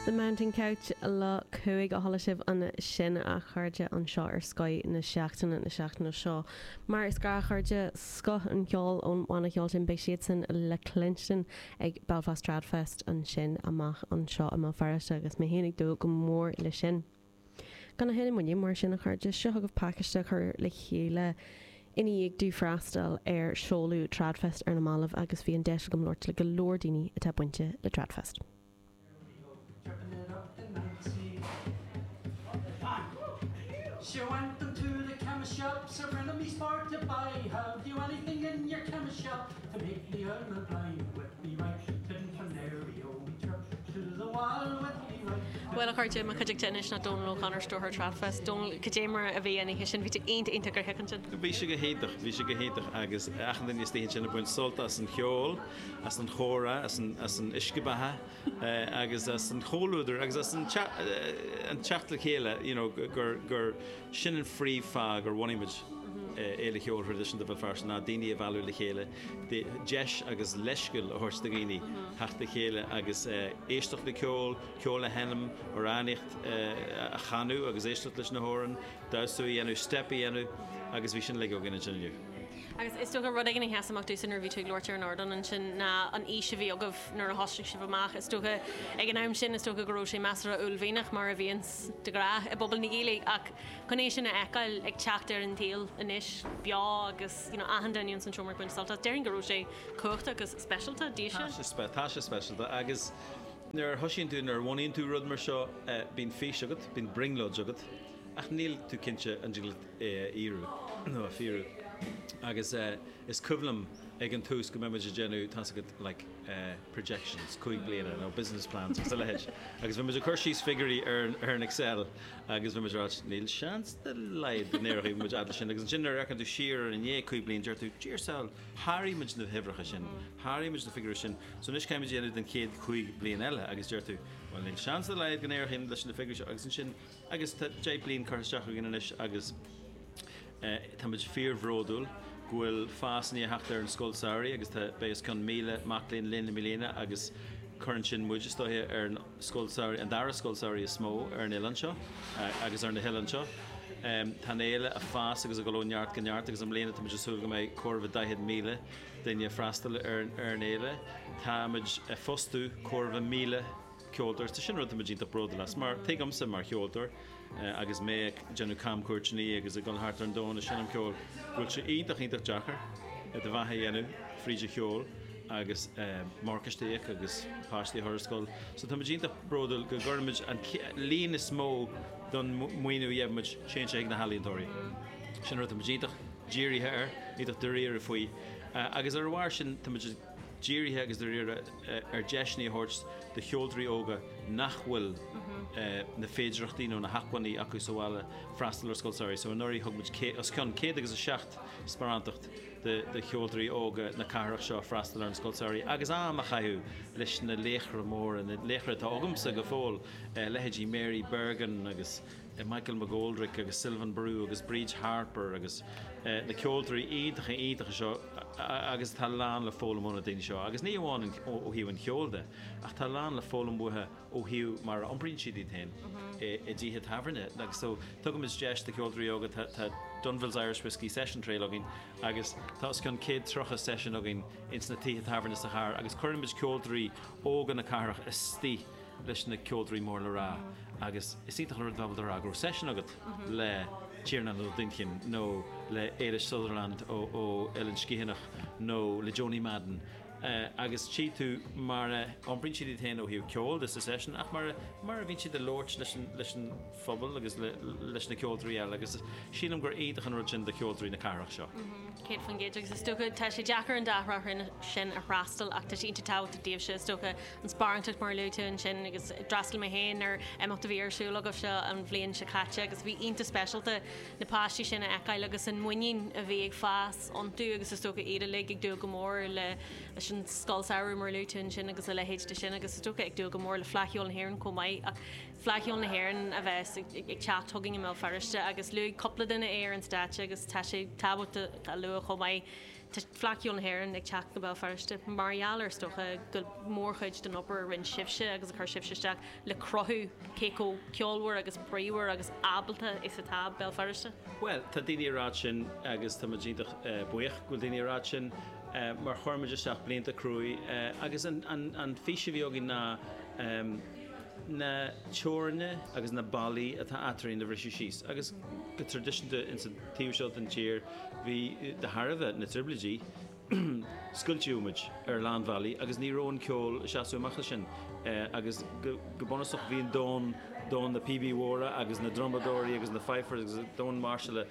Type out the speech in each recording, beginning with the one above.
The Mountain Couch, Lá 5 a chuala sibh ansin a chairde anseo ar Scoth na Seachtaine na seachtaine seo. Mar is gnách a chairde, scoth an cheoil ón bhanna cheoil sin beidh siadsan le cluinstin ag Belfast Tradfest ansin amach anseo i mBéal Feirste agus mé féin ag dúil go mór leis sin. Gan a thuilleadh moille mar sin a chairde, seo chugaibh pacáiste a chuir le chéile i ndiaidh domh freastal ar seoladh Tradfest ar na mallaibh agus bhí an deis agam labhairt le go leor daoine atá bainte le Tradfest. To make the Iron blind with me right Didn't Canary only chirp To the wall with me right Didn't Bhuel, a chairde, i mo chuideachta anois ná Dónal O'Connor, Stiúrthóir Tradfest. Dónal, cad é mar a bhí an oíche sin? Bhí tú iontach iontach ar thiocfainn sin. Bhí sé go hiontach, bhí sé go hiontach agus achan duine istigh ansin ag baint sult as an cheol, as an chomhrá, as an uisce beatha. agus as an chomhluadar agus as an teacht le chéile you know gur sin an phríomh fáth gur bhunaigh muid Fhéile Cheoil Thraidisiúnta Bhéal Feirste ná daoine a bhailiú le chéile, deis agus leithscéal a thabhairt do dhaoine theacht le chéile agus éisteacht le ceol, ceol a sheinm, amhránaíocht a chanadh agus éisteacht leis na hamhráin, damhsa a dhéanamh, steip a dhéanamh agus bhí sin uilig againn ansin inniu. Agus is dócha rud éigin a sheas amach domhsa nuair a bhí tú ag labhairt ar an ardán ansin ná an fhís a bhí agaibh nuair a thosaigh sibh amach. Is dócha, ag an am sin, is dócha go raibh sé measartha uaillmhianach, mar a bhíonns de ghnáth i bpobal na Gaeilge, ach chun é sin a fheiceáil ag teacht ar an tsaol anois, beo agus, you know, achan duine ins an seomra ag baint sult as, déarfainn go raibh sé cumhachtach agus speisialta, daoibhse. Tá sé, tá sé speisialta. Agus nuair a thosaíonn tú, nuair a bhunaíonn tú rud mar seo, bíonn fís agat, bíonn brionglóid agat. ach níl tú cinnte an dtig leat é a fhíorú nó a fíorú. Agus is cuimhin liom ag an tús go mbímis ag déanamh, tá's agat, like projections cúig bliana nó business plans agus a leithéid agus bhímis ag cur síos figiúirí ar an Excel agus bhímis ag rá níl seans dá laghad go n-éireoidh muid fhad le sin agus ansin nuair a fhéachann tú siar ar i ndiaidh cúig bliana deir tú ar an saol sháraigh muid na huimhreacha sin, sháraigh muid na figiúirí sin so anois caithfimid é a dhéanamh don chéad chúig bliana eile agus deir tú bhuel níl seans dá laghad go n-éireoidh leis na figiúirí seo agus ansin Agus tá deich mbliana curtha isteach againn anois agus táimid fíor bhródúil go bhfuil fás i ndiaidh teacht ar an scoil samhraidh agus tá beidh os cionn 1,000 mac léinn linn i mbliana agus cuireann sin muid, is dóiche, ar an scoil samhraidh, an dara scoil samhraidh is mó ar an oileán seo agus ar na hoileáin seo. Tá an fhéile ag fás agus ag dul ó neart go neart agus i mbliana táimid ag súil go mbeidh corradh le 40,000 duine ag freastal ar an fhéile. Táimid ag fostú corradh le 1,000. ceoltóir, tá sin rud atá muid iontach bródúil as mar tuigimse mar cheoltóir agus mé ag déanamh camchuairteannaí agus ag dul thart ar an domhan ag seinm ceoil go bhfuil sé iontach, iontach deacair do bheatha a dhéanamh fríd an cheol agus morgáiste a íoc agus páistí a chur ar scoil so tá muid iontach bródúil go gcuireann muid an líon is mó den mhaoiniú a gheibh muid téann sé chuig na healaíontóirí. Sin rud atá muid iontach dírithe air, iontach dáiríre faoi agus ar a bharr sin tá muid ag. dírithe agus dáiríre ar deiseanna a thabhairt do cheoltóirí óga nach bhfuil na féidearthachtaí nó na hacmhainní acu sa bhaile freastal ar scoil samhraidh. So anuraidh thug muid os cionn céad agus a seacht sparántacht do cheoltóirí óga na cathrach seo freastal ar an scoil samhraidh agus am a chaitheamh leis na laochra móra, na laochra atá agamsa go fóill, leithéidí Mary Bergin agus. Michael McGoldrick agus Sylvain Barou agus Bríd Harper agus na ceoltóirí iontacha iontacha seo agus tá lán le foghlaim ó na daoine seo agus ní amháin ó thaobh an cheoil de ach tá lán le foghlaim uathu ó thaobh mar a iompraíonn siad iad féin i dtithe tábhairne agus so tugann muid deis do cheoltóirí óga tá tá Dunville's Irish Whiskey Session Trail againn agus tá os cionn céad tríocha session againn ins na tithe tábhairne sa chathair agus cuireann muid ceoltóirí óga na cathrach istigh leis na ceoltóirí mór le rá agus is iontach an rud dóibh a rá go raibh session agat le Tiarnán Ó Duinnchinn nó le Ailis Sutherland ó Eilean Sgiathanach nó le Joanie Madden agus tchí tú mar a iompraíonn siad iad féin ó thaobh ceoil de sa session ach mar a bhíonn siad ag labhairt leis an phobal agus leis na ceoltóirí eile agus sílim gur iontach an rud sin do cheoltóirí na cathrach seo. Céad fan gcéad agus is dócha tá sé deacair an dá thráth sin a fhreastal ach tá sé iontach tábhachtach daoibhse is dócha an sparántacht mar a luaigh tú ansin agus d'fhreastail mé féin ar imeacht a bhí ar siúl agaibhse an bhliain seo caite agus bhí iontach speisialta na páistí sin a fheiceáil agus an muinín a bhí ag fás iontu agus is dócha iad uilig ag dúil go mór le leis an Scoil Samhraidh mar a luaigh tú ansin agus a leithéid de sin agus is dócha ag dúil go mór le Fleadh Cheoil na hÉireann chomh maith ach Fleadh Cheoil na hÉireann a bheas ag ag teacht chugainn i mBéal Feirste agus luaigh cúpla duine é ar an stáitse agus tá sé tábhachtach a lua chomh maith Tá Fleadh Cheoil na hÉireann ag teacht go Béal Feirste mar gheall ar is dócha go mórchuid den obair a rinne sibhse agus a chuir sibhse isteach le cruthú cé chomh ceolmhar agus bríomhar agus ábalta is atá Béal Feirste. Bhuel, tá daoine a ráit sin agus tá muid iontach buíoch go bhfuil daoine a ráit sin mar chuir muid isteach blianta cruaidh agus an fís a bhí againn ná na teorainne agus na ballaí atá eadrainn a bhriseadh síos agus go traidisiúnta insa taobh seo den tír Bhí, de thairbhe na dtrioblóidí, scoiltíodh muid ar a lán bealaí agus ní raibh an ceol ag seasamh amach as sin agus go bunúsach bhí an domhan, domhan na bpíobaí móra agus na drumadóirí agus na fifers agus domhan máirseála,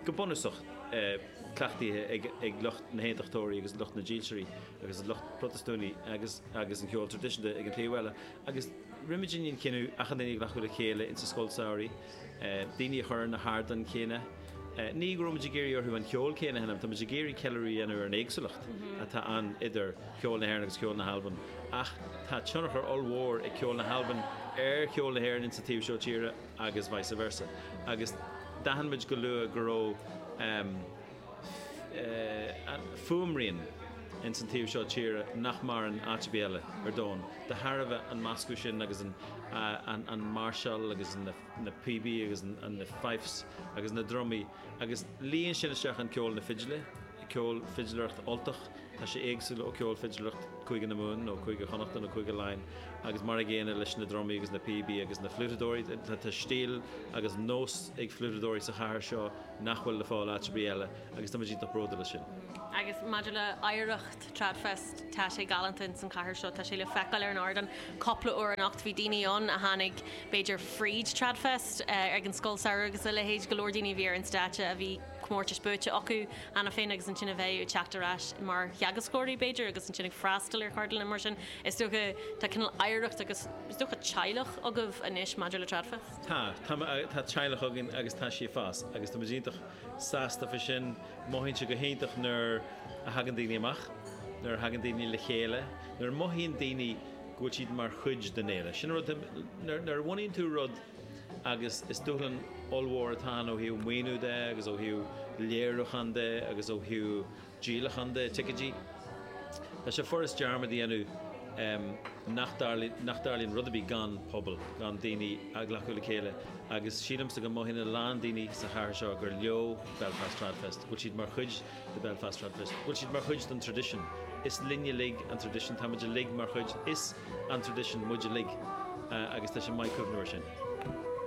go bunúsach cleachtaithe ag lucht na hAontachtóirí agus lucht na Dílseirí agus lucht Protastúnaí agus agus an ceol traidisiúnta ag an taobh eile agus rinne muid an cinneadh achan duine a ghlacadh le chéile ins an scoil samhraidh daoine a chur ar na hardáin chéanna. Ní go raibh muid ag iarraidh orthu an ceol céanna a sheinm, tá muid ag iarraidh ceiliúradh a dhéanamh ar an éagsúlacht atá ann idir cheol na hÉireann agus cheol na hAlban, ach tá tionchar ollmhór ag ceol na hAlban ar cheol na hÉireann insa taobh seo tíre agus vice versa. Agus d'aithin muid go luath go raibh. fuaimrian ins an taobh seo tíre nach maireann áit ar bith eile ar domhan de thairbhe an meascadh sin agus an máirseáil agus na píobaí agus na fifes agus na drumaí agus líon sin isteach i gceol na fidle, ceol fidléireacht Ultach, tá sé éagsúil ó ceol fidléireacht Cúige na Mumhan nó Cúige Chonnachta nó Cúige Laighin agus mar an gcéanna leis na drumaí agus na píobaí agus na fliútadóirí, tá stíl agus nós ag fliútadóirí sa chathair seo, nach bhfuil le fáil áit ar bith eile agus táimid iontach bródúil as sin. Agus maidir le hoidhreacht Tradfest, tá sé galánta ins an chathair seo, tá sé le feiceáil ar an ardán cupla uair anocht, bhí daoine ann a tháinig b'fhéidir fríd Tradfest, ag an Scoil Samhraidh agus a leithéid, go leor daoine a bhí ar an stáitse a bhí comórtais buaite acu cheana féin agus ansin a bheith ag teacht ar ais mar theagascóirí b'fhéidir agus ansin ag freastal ar cheardlanna mar sin is dócha tá cineál oidhreacht agus is dócha teaghlach agaibh anois maidir le Tradfest. Tá, tá, tá teaghlach againn agus tá sí ag fás agus tá muid iontach sásta faoi sin. Mothaíonn sé go hiontach nuair a thagann daoine amach, nuair a thagann daoine le chéile, nuair a mothaíonn daoine go bhfuil siad mar chuid den fhéile. Sin an rud, nuair, nuair a bhunaíonn tú rud agus is dúshlán ollmhór atá ann ó thaobh maoiniú de agus ó thaobh léiriúchán de agus ó thaobh díolachán de, ticéidí. Tá sé furast dearmad a dhéanamh nach dtarlaíonn rud ar bith gan pobal, gan daoine a ghlacadh le chéile agus sílimse go mothaíonn a lán daoine sa chathair seo gur leo Belfast Tradfest, go bhfuil siad mar chuid de Belfast Tradfest, go bhfuil siad mar chuid den traidisiún. Is linne uilig an traidisiún, táimid uilig mar chuid, is an traidisiún muid uilig agus tá sé maith cuimhneamh ar sin.